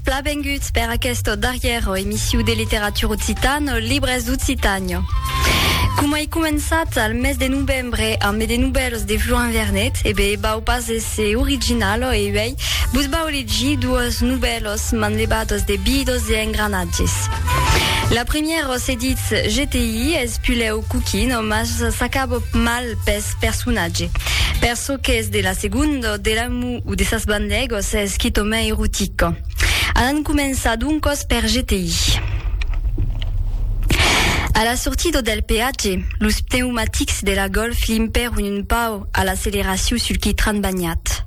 Bla benguts per aquesta darrièra emissiu de Literatura Occitana, Libres d'Occitània. Coma ei començat al mes de novembre ambe de novèlas de Florin Vernet, e ben, vau pas èsser originala e uèi vos vau legir doas novèlas manlevadas de bidos e engranatges. La primièra se ditz GTI, es pulèu coquina, mas s'acaba mal pes personatge. Per çò qu'es de la segonda, de la Ua de sas bandegos es quitò mei erotica. Alan començar doncòs per GTI. A la sortida del peatge, los pneumatics de la Golf limpèron un pauc a l'acceleracion sul quitran banhat.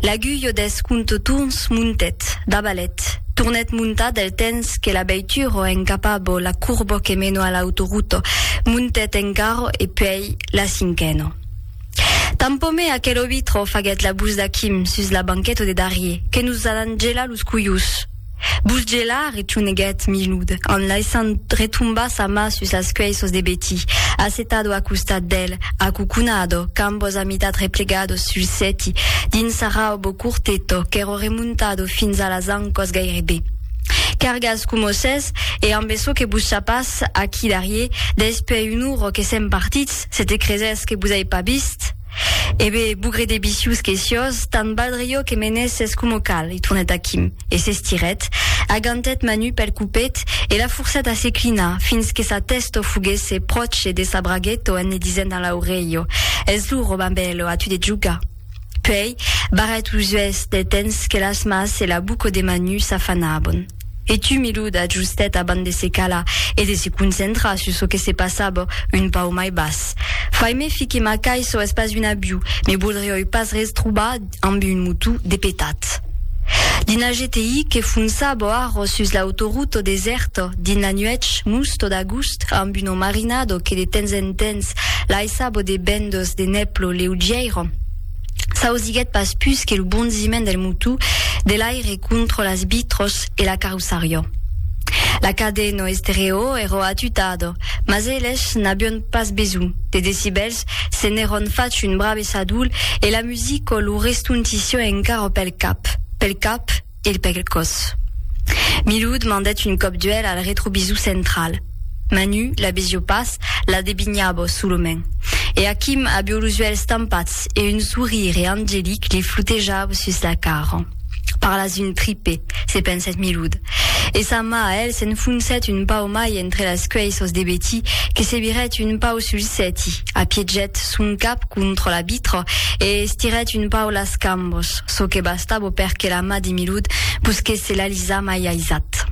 L'agulha dels comptotorns montèt, dabalèt, tornèt montar del temps que la veitura encapava la corba que mena a l'autoruta, montèt encara e puèi la cinquena. Tampomé aquel obi trò faguèt la bus d'Aquim sus la banqueta de darrier, que nos alan gelar los cuius. Bus gelar, retuneguèt Milud, en laissant retombar sa mà sus las cuèissos de Betty, assetado a costat d'el, acuconado, cambos a mitat replegados sul sèti, dins sa raubo curteto qu'èro remontado fins a las ancòs gairebe. Cargas coma sètz, e ambe çò que bus chapàs aquí darrier, despuèi un uro que sèm partits, Se te cresès que vos ai pas vist? E be, bugre de bicius que siós, tant valdre jo que m'anesses coma cal, i tornèt a Quim, e s'estirèt, agantèt Manu pel copet e la forcèt a se clinar fins que sa tèsto foguèsse pròche de sa braguèto en li disent a l'aurelho, Es lo Robin Bèlo, a tu de jogar! Puèi, barrèt los uèlhs del temps que las mas e la buco de Manu s'afanavan. E tu, Milou, t'ajustèt abans de se calar e de se concentrar sus çò que se passava un pauc mai bas. Fai me fi que ma cai çò es pas un abiu, me voldrioi pas res trobar amb un motó de petat. Dins la GTI que fonçava arròs sus l'autoruta desèrta, dins la nuèch musto d'agust, amb un omarinado que de temps en temps laissava de bendas de nep lo leugièira s'ausiguèt pas pus que lo bondiment del motú de l'aire contra las vitros e la carrossariò. La cade no estereo ero atutado, mas eles n'avion pas besonh de decibèls, se n'eron fach un brave sadol e la musico lo restontissió encara pel cap, pel cap, e l pèc còs. Milud mandèt un còp d'uèlh al retrovisor central. Manu la vesió pas, la devinhava solament. E Akim avió los uèlhs tampats e un sorire angelic li flotejava sus la cara. Parlas un tripe, se pensèt Milud. E sa mà a el s'enfoncèt un pauc mai entre las cuèisas de Betty que se virèt un pauc sul sèti, apiegèt son cap contra la vitra e estirèt un pauc las cambas, çò que Stabo per que la ma di Milud busquèsse la Lisa mai aisat.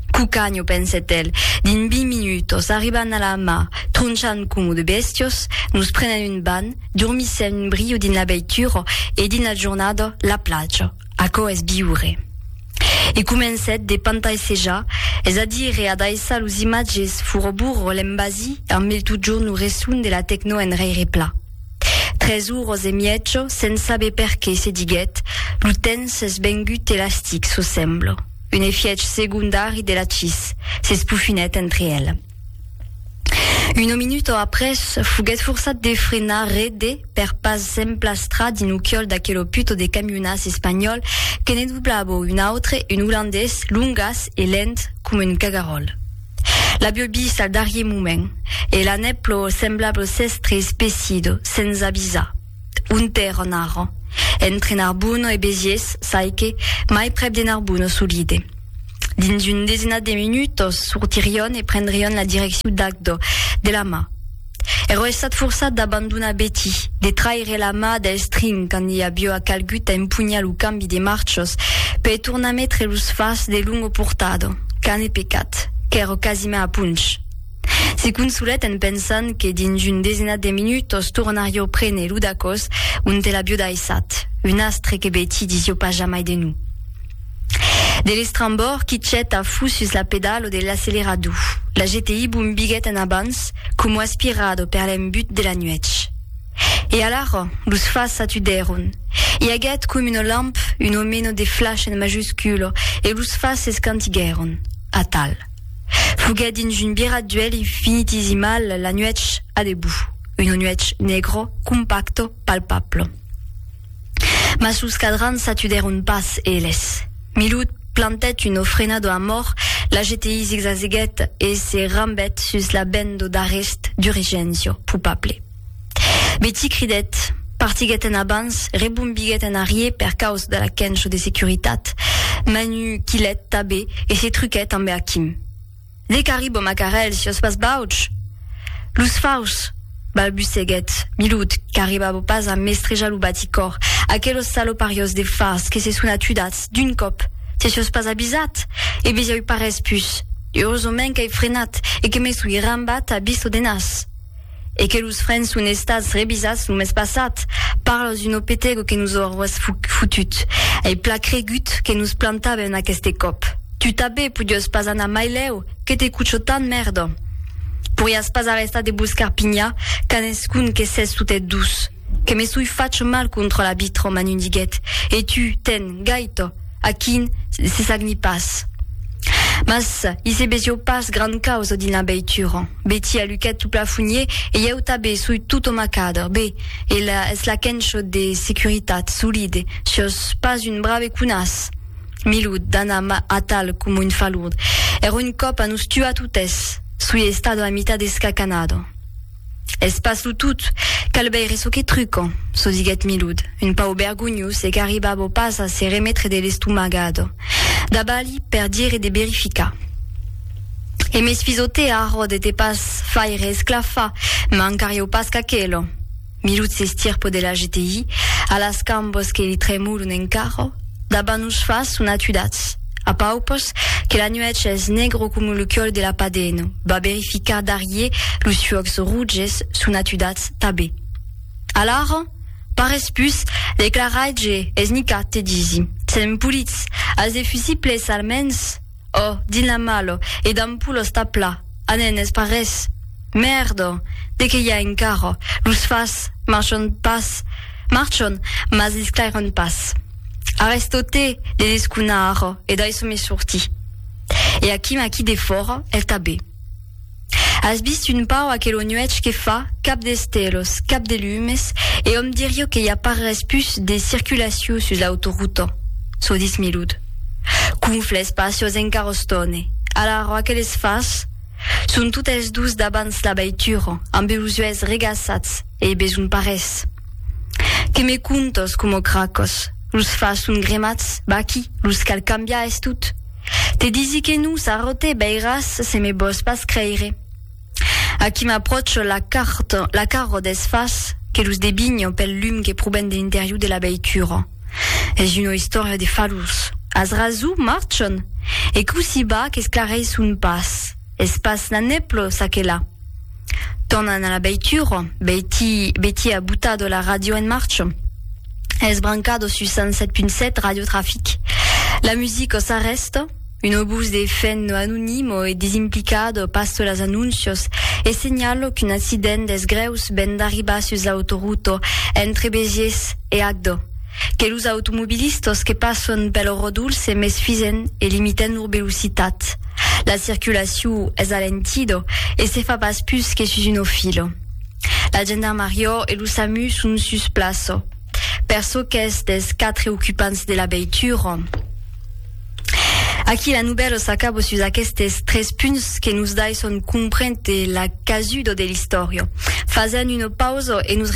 Cucagno, pensèt el, dins vint minutos arriban a la ma, tronchan comu de bèstios, nos prenen un ban, dormissèm un brio dins la veitura e dins la jornada, la plaja. Aquò es viure. E comencèt de pantaisejar, es a dire a daissar los imatges furo burro l'embasir amb el totjorn lo resson de la tecno enraire pla. Tres uros e mièjo, sens saber perqué, se diguèt, lo temps s'es vengut elastic sus semblo un efièch segondari de la chis, s'espofinèt entre el. Un minuto après, foguèt forçat de frenar re de per pas s'emplastra dins lo chiòl d'aquelo puto de camionàs espanhòl que ne doblabo un autre, un olandés, longas e lent coma un cagaròl. L'avió vist al darrier moment e la nèp lo semblable s'èstre espessido sens avisar. Onte èran ara? Entre Narbonne e Béziers, çaique mai prèp de Narbonne solide. Dins un desenat de minutos sortirion e prendrion la direccion d'Agdò, de la mà. Ero estat forçat d'abandonar Betty, de traire la mà del string quand i aviua calgut a empunhar lo cambi de marchas per tornar metre los fars de Lungo Portado, qu'ane pecat, qu'èro quasiment a punch. Se consolèt en pensant que dins un desenat de minutas tornarió prene lo dacòs onte l'avió daissat, un astre que Betty disió pas jamai de non. De l'estrambòrd qui chet a fus sus la pedalo de l'accelerador, la GTI bombiguèt en abans coma aspirado per l'embut de la nuèch. E alara, los fas s'atudèron. I aguèt com una lamp, un omeno de flash en majusculo, e los fas s'escantiguèron. Atal. Foguèt dins un birat d'uèlh infinitisimal la nuèch a debut, una nuèch negro, compacto, palpablo. Mas los cadrans s'atudèron pas, eles. Milhoud plantèt una ofrena de amor, la jetèi zigzazeguèt e se rambèt sus la ben de darrèst d'Urigenzio, pupable. Betí cridèt, partiguèt en abans, rebombiguèt en arrier per causa de la quencho de securitat. Manu quilhèt tabé e se truquèt ambe Achim. Ne carri bo macarèl siòs pas bauch! Los fauchs! balbuceguèt Milud, qu'arriba bo pas a m'estrejar lo baticòr, aquelos salopariòs de fars que se son atudats, d'un còp! Te siòs pas abisat? E besiá ui parés pus! Eurosament qu'ai frenat e que me soi rambat a bisto de nas! e que los frens son estats revisats lo mes passat, parlos d'un opetego que nos aurois fotut, ai plan cregut que nos plantaven aqueste còp. Tu tabé podiós pas anar mai lèu, que te cucho tant mèrda! Poriás pas arrestar de boscar pinha qu'an escun que s'es totet dus. Que me soi fach mal contra la vitra, m'an un diguet, e tu, ten, gaita, a quin se sagni pas. Mas i se besió pas gran causa dins la veitura. Betty aluquèt lo plafonnier e ieu tabé soi tot o macadre. Be, ela es la quencho de securitat, solide, siós pas un brave conas. Milud, d'ana atal coma un falurd. Era un còp a nos tuar totes. Soi estado a mitat escacanado. Es pas lo tot, cal veire çò que truca, çò diguèt Milud, un pauc vergonhós e qu'arribava pas a se remetre de l'estomagada. Dabalí per dire de verificar. E mes fisote arrò de te pas faire esclafar, mancarieu pas qu'aquela. Milud s'estirpa de la GTI, a las cambas que li tremolon encara, daba nos fas son atudats. A paupers, que la nuèch es negro coma lo còl de la padena, va verificar darrier los fuòcs roges son atudats tabé. Alara, parés pus, declaraitge es nicat te disi, sèm polits, as de fusibles almens? Ò, dins la malha, e damb polos tà pla, a nen es pas res. Mèrda! De qué i a encara? Los fas, marchon pas, marchon, mas lisclairon pas. Arestòte de desconar e dai son me sorti. E aqui m'aquí defòra, el tabé. As vist un pauc aquelo nuech que fa, cap d'estèlos, cap de lumes, e òm dirio que i a pas res pus de circulaciu sus l'autoruta? Çò ditz Milud. Qu'unfla es pacios en carrostòne. Alara aqueles fas son totes dus dabans la veitura, ambe los uèlhs regaçats e besonh pas res. Que me contos coma cracos, los fas son gremats, vaquí, los cal cambiar es tot. Te disi que non, Sarrote, veiràs se me vòs pas creire. Aquí m'apròcho la carta, la carro des fas, que los devinho pel lum que proven de l'interior de la veitura. Es una istòria de falhors. As rason, marchand? E cossí va qu'esclareisson pas. Es pas Naneplo, ça que là. Tornan a la beitura, Betty, Betty a butado la radio en marcha. Es brancado sus 107.7 Radio Trafic. La musica s'arresta, un obús de fent anonimo e desimplicado pasta las anúncios e senhala qu'un accident des greus ven d'arribar sus l'autoruta entre Béziers e Agde. Que los automobilistas que passon pel rodolh se mesfisen e limiten lor velocitat. La circulacion es alentida e se fa pas pus que sus una fila. La gendarmariá e lo samu son sus plaça. Per çò qu'es dels quatre ocupants de la veitura, aquí la novèla s'acaba sus aquestes tres punts que nos daisson comprendre la casuda de l'istòria. Fasèm una pausa e nos retrobam a la fin de l'enregistrament.